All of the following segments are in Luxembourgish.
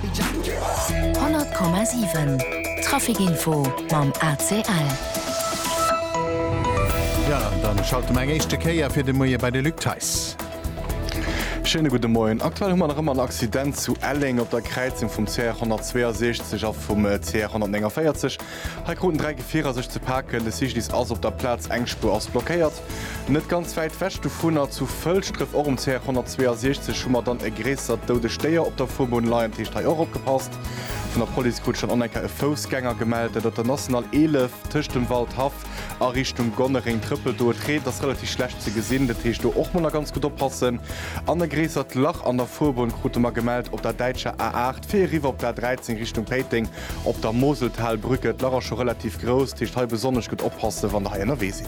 100,7 Trafic Info mam ACL. Ja, an dann schalte mer eng éischte Kéier fir de Moie bei de Luc Theis. Schéine gudde Moien. Aktuell hu mer nach ëmmer en Accident zu Elleng op der Kräizung vum CR 162 a vum CR 149. Hei kruten dräi Gefierer sech ze paken. De Cyclist ass op der Plaz, eng Spuer ass blockéiert. Net ganz wäit wech dovunner, zu Fëlschdref, och um CR 162, hu mer dann e gréissert doudegt Déier op der Fuerbunn leien, dat heescht hei och opgepasst. Vun der Police krut ech dann och nach eng Kéier e Foussgänger gemellt, dat op der National 11 tëscht dem Waldhaff a Richtung Gonnereng trëppelt. Do et reent, ass relativ schlecht ze gesinn, dat heescht do och mol nach ganz gutt oppassen. An e gréissert Lach an der Fuerbunn krute mer gemellt op der däitscher A 8 fir eriwwer op der A 13 Richtung Péiteng op der Moseltalbrücke. D'Lach ass scho relativ grouss, dat heescht hei besonnesch gutt oppassen, wann Der hei ënnerwee sidd.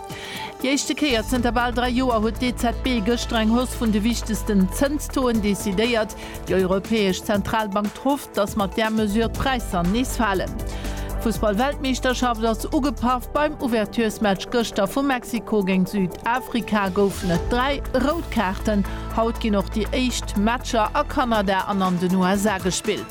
Déi éischte Kéier zënter bal dräi Joer huet d'EZB gëschter eng Hausse vun de wichtegsten Zënstoen decidéiert. Déi Europäesch Zentralbank trufft, datt mat där Mesure d'Präisser nees falen. D'Fussballweltmeeschterschaft ass ugepaff, beim Ouverturesmatch gëschter vu Mexiko géint Südafrika goufen et dräi rout Kaarten. Haut ginn och déi éischt Matcher a Kanada an an den USA gespillt.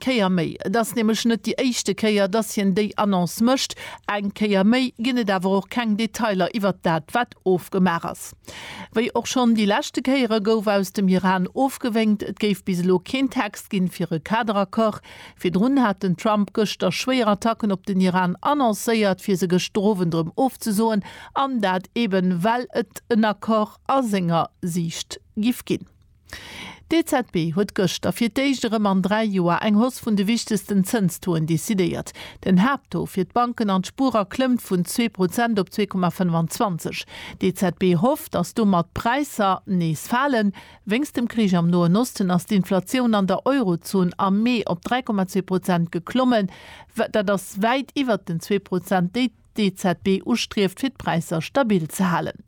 Kéier méi. Et ass nämlech net déi éischte Kéier, dass hien déi Annonce mécht. Eng Kéier méi ginn et awer och keng Detailer iwwert dat, wat ofgemaach ass. Wéi och schonn déi leschte Kéiere gouf aus dem Iran ofgewénkt, et géif bis elo keen Text ginn, fir e Kaderaccord. Virdrun hat den Trump gëschter schwéier Attacken op den Iran annoncéiert, fir se gëschter Owend erëm ofzesoen, an dat eeben, well et en Accord a senger Siicht giff ginn. D'EZB huet gëschter fir d'éischt erëm an dräi Joer eng Hausse vun de wichtegsten Zënstoen decidéiert. Den Haapttaux fir d'Banken an d'Spuerer klëmmt vun zwee Prozent op zwee Komma 25. D'EZB hofft, datt domat d'Präisser nees falen. Wéinst dem Krich am Noen Osten ass d'Inflatioun an der Eurozon am Mee op 3,2 Prozent geklommen. Dat ass wäit iwwert den zwee Prozent, déi d'EZB ustrieft fir d'Präisser stabil ze halen.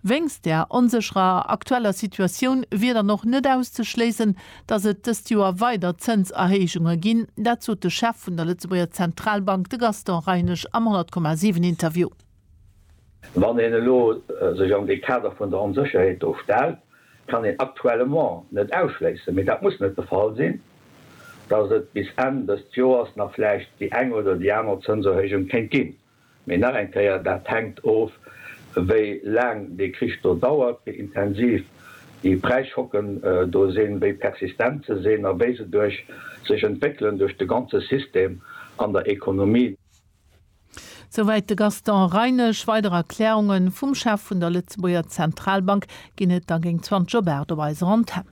Wéinst der onsécherer aktueller Situatioun wier dann och net auszeschléissen, datt et dëst Joer weider Zënserhéijunge ginn. Dat sot de Chef vun der Lëtzebuerger Zentralbank, de Gaston Reinesch am 100,7 Interview. Wann een elo sech an dee Kader vun der Onsécherheet do stellt, kann een aktuellement net ausschléissen, mee dat muss net de Fall sinn, dass et bis Enn dëst Joers nach vläicht déi eng oder déi aner Zënserhéijung kéint ginn. Mee nach eng Kéier, dat hänkt of, wéi laang dee Krich do dauert, wéi intensiv déi Präisschocken do sinn, wéi persistent se sinn a wéi se duerch sech entwéckelen duerch de ganze System an der Ekonomie. Souwäit de Gaston Reinesch. Weider Erklärunge vum Chef vun der Lëtzebuerger Zentralbank ginn et da géint 20 op 8 op eiser Antenn.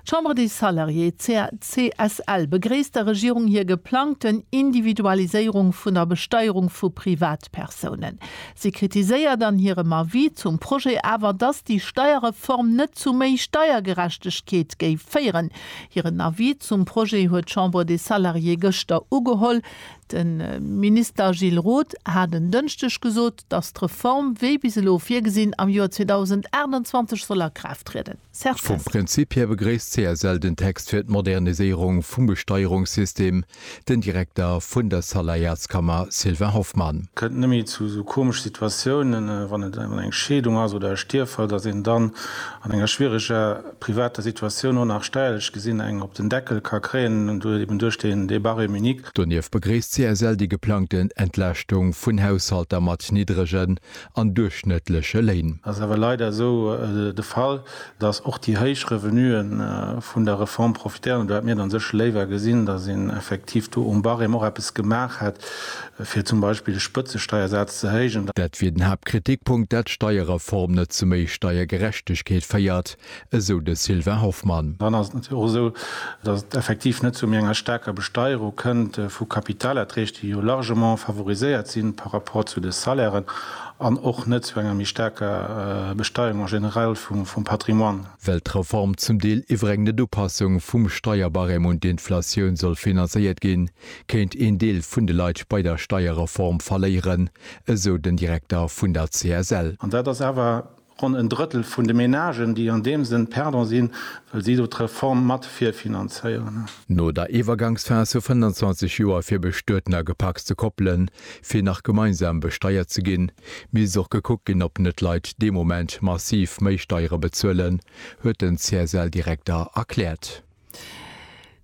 D'Chambre des Salariés, CSL, begréisst der Regierung hir geplangten Individualiséierung vun der Besteierung vu Privatpersounen. Si kritiséiert an hirem Avis zum Projet awer, datt déi Steierreform net zu méi Steiergerechtegkeet géif féieren. Hiren Avis zum Projet huet d'Chambre des Salariés gëschter ugeholl. De Minister Gilles Roth hat en Dënschdeg gesot, datt d'Reform wéi bis elo virgesinn am Joer 2028 soll a Kraaft trieden. Serge Kestner. Vum Prinzip hir begréisst d'CSL den Text fir d'Moderniséierung vum Besteierungssystem, den Direkter vun der Saläierskammer Sylvain Hoffmann. Kënnt nëmme zu esou komesch Situatiounen, wann et eng Scheedung ass oder e Stierffall, datt een dann an enger schwiereger privater Situatioun och nach steierlech gesinn eng op den Deckel ka kréien, eben duerch deen Débat rémunique. Donieft begréisst d'CSL déi geplangten Entlaaschtung vun Haushalter mat niddregen an duerchschnëttleche Léin. Et ass awer leider esou de Fall, datt och déi héich Revenue vun der Reform profitéieren, an do hätt mir dann sécher léiwer gesinn, datt een effektiv do um Barème och eppes gemaach hätt, fir zum Beispill de Spëtzesteiersaz ze héijen. Dat wier den Haaptkritikpunkt, datt d'Steierreform net zu méi Steiergerechtegkeet féiert, esou de Sylvain Hoffmann. Dann ass et natierlech och esou, datt et effektiv net zu méi enger staarker Besteierung kënnt vu Kapitalerträg, déi jo largement favoriséiert si par rapport zu de Salairen, an och net zu enger méi staarker Besteierung en général vum Patrimoine. Well d'Reform zum Deel iwwer eng Net-Upassung vum Steierbarème un d'Inflatioun soll finanzéiert ginn, kéint een Deel vun de Leit bei der Steierreform verléieren, esou den Direkter vun der CSL. An dat ass awer Ronn en Drëttel vun de Menagen, déi an deem Sënn perdant sinn, well si do d'Reform mat virfinanzéieren. No der Iwwergangsphas vu 25 Joer fir bestueten a gepacste Koppelen, fir nach gemeinsam besteiert ze ginn, misst och gekuckt ginn, ob net Leit dee Moment massiv méi Steiere bezuelen, huet den CSL-Direkter erkläert.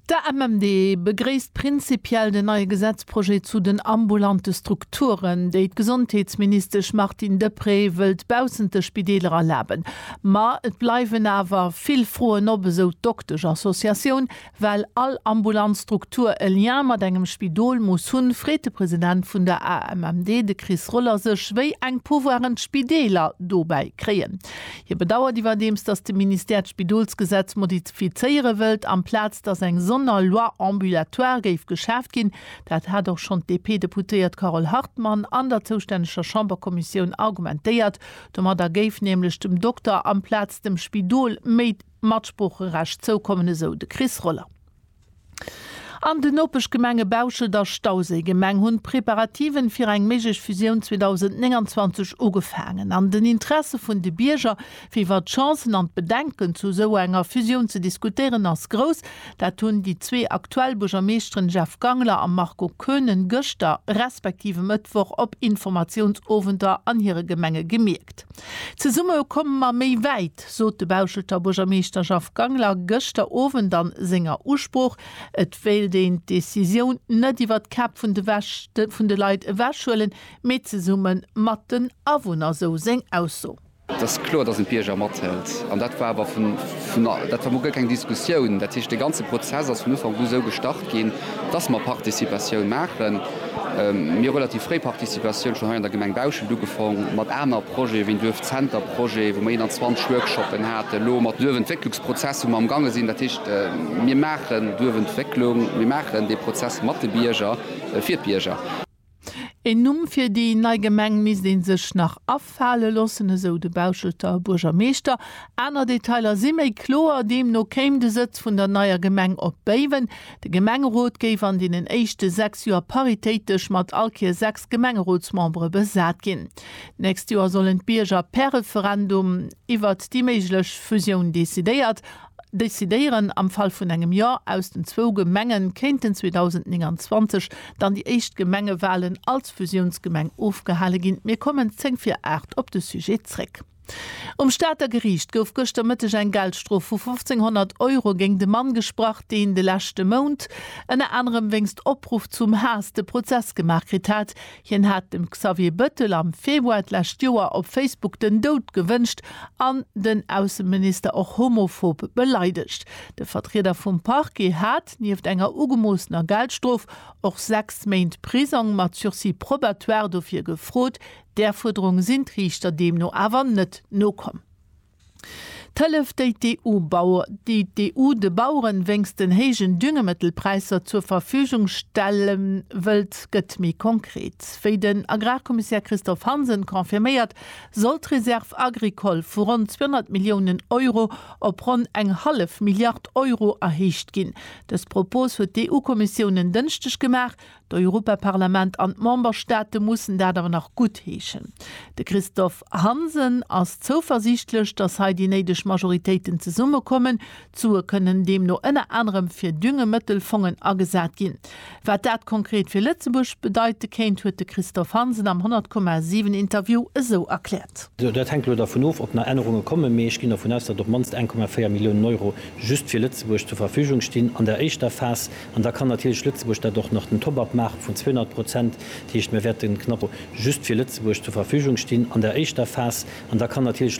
De MMD begréisst prinzipiell den neie Gesetzprojet zu den ambulante Strukturen, déi d'Gesondheetsministesch Martine Deprez wëllt baussent de Spideeler erlaben. Ma et bleiwen awer vill Froen op, esou d'Dokteschassociatioun. Well all ambulant Struktur e Lien mat engem Spidol muss hunn, freet de President vun der AMMD, de Chris Roller, sech, wéi eng Pouvoiren d'Spideeler dobäi kréien. Hie bedauert iwwerdeems, datt de Ministère d'Spidolsgesetz fizéiere wëllt, amplaz datt eng sonder Loi ambulatoire géif geschaaft ginn. Dat hat och schonn d'DP-Deputéiert Carole Hartmann an der zoustänneger Chamberkommissioun argumentéiert. Domadder géif nämlech dem Dokter amplaz dem Spidol méi Matsproocherecht zoukommen, esou de Chris Roller. An den Nopeschgemenge Bauschelt a Stauséigemeng hunn d'Preparativen fir eng méiglech Fusioun 2029 ugefaangen. An den Interesse vun de Bierger, fir iwwer d'Chancen an d'Bedenken zu esou enger Fusioun ze diskutéieren, ass grouss. Dat hunn déi zwee aktuell Buergermeeschteren Jeff Gangler a Marco Koenen gëschter, respektiv e Mëttwoch op Informatiounsowenter an hire Gemenge gemierkt. Zesumme komme mer méi wäit! Dat sot de Bauschelter Buergermeeschter Jeff Gangler gëschter Owend a senger Usprooch. Et wéilt een d'Decisioun net iwwer d'Käpp vun de vun de Leit ewech huelen, mee zesumme mat den Awunner, sou seng Ausso. Et ass kloer, datt een d'Bierger mathëlt. An dat war awer vun, dat war mol guer keng Diskussioun. Dat heescht, dee ganze Prozess ass vun Ufank u sou gestart. ginn, dass mer Participatioun maachen. Mir hu relativ fréi Participatioun schonn hei an der Gemeng Bauschelt ugefong mat aner Projete wéi Duerfzenter-Projet, wou mer 21 Workshoppen haten, elo mat Duerfentwécklungsprozess, wou mer am gaange sinn. Dat heescht, mir maachen Duerfentwécklung, mir maachen dee Prozess mat de Bierger, fir d'Bierger. Een Numm fir déi nei Gemeng misst ee sech nach afale loossen, esou de Bauschelter Buergermeeschter. Aner Detailer si méi kloer. Deemno kéim de Sëtz vun der neier Gemeng op Béiwen. De Gemengerot géif an deenen éischte sechs Joer paritéitesch mat all Kéier sechs Gemengerotsmembere besat ginn. D'nächst Joer sollen d'Bierger per Referendum iwwert déi méiglech Fusioun decidéiert decidéieren. Am Fall vun engem Jo aus den zwou Gemenge kéinten 2029 dann déi éischt Gemengewalen als Fusiounsgemeng ofgehale ginn. Mir kommen zéng vir aacht op de Sujet zréck. Um Stater Geriicht gouf gëschter Mëtteg eng Geldstrof vu 1.500 Euro géingt e Mann gesprach, deen de leschte Mount ënner anerem wéinst Opruff zum Haass de Prozess gemaach kritt hat. Hien hat dem Xavier Bëttel am Februar d'lescht Joer op Facebook den Doud gewënscht an den Ausseminister och homophob beleidegt. De Vertrieder vum Parquet hat, nieft enger ugemoossener Geldstrof, och sechs Méint Prisong mat Sursis probatoire dofir gefrot. Där Fuerderung sinn d'Riichter deemno awer net nokomm. D'Hëllef, déi d'EU de Baueren wéinst den héijen Düngemittelpräisser zur Verfügung stelle wëllt, gëtt méi konkret. Wéi den Agrarkommissär Christophe Hansen confirméiert, soll d'Réserve agricole vu ronn 200 Milliounen Euro op ronn eng hallef Milliard Euro erhéicht ginn. Dës Propos huet d'EU-Kommissioun en Dënschdeg gemaach, D'Europaparlament an d'Memberstaate mussen dat awer nach guttheeschen. De Christophe Hansen ass zouversiichtlech, datt hei déi néideg Majoritéiten zesummekommen. D'Sue kënnen deemno ënner anerem fir Düngemëttelfongen agesat ginn. Wat dat konkret fir Lëtzebuerg bedeite kéint, huet de Christophe Hansen am 100, 7 Interview esou erkläert. Dat hänkt elo dervun of, ob nach Ännerunge kommen, mee ech ginn dervun aus, datt op d'mannst 1,4 Milliounen Euro just fir Lëtzebuerg zur Verfügung stinn an der éischter Phas. An da kann natierlech Lëtzebuerg dat och nach den Top-up maache vun 200 Prozent. Dat heescht, mir wäerte knapp just fir Lëtzebuerg zur Verfügung stinn an der éischter Phas. An da kann natierlech.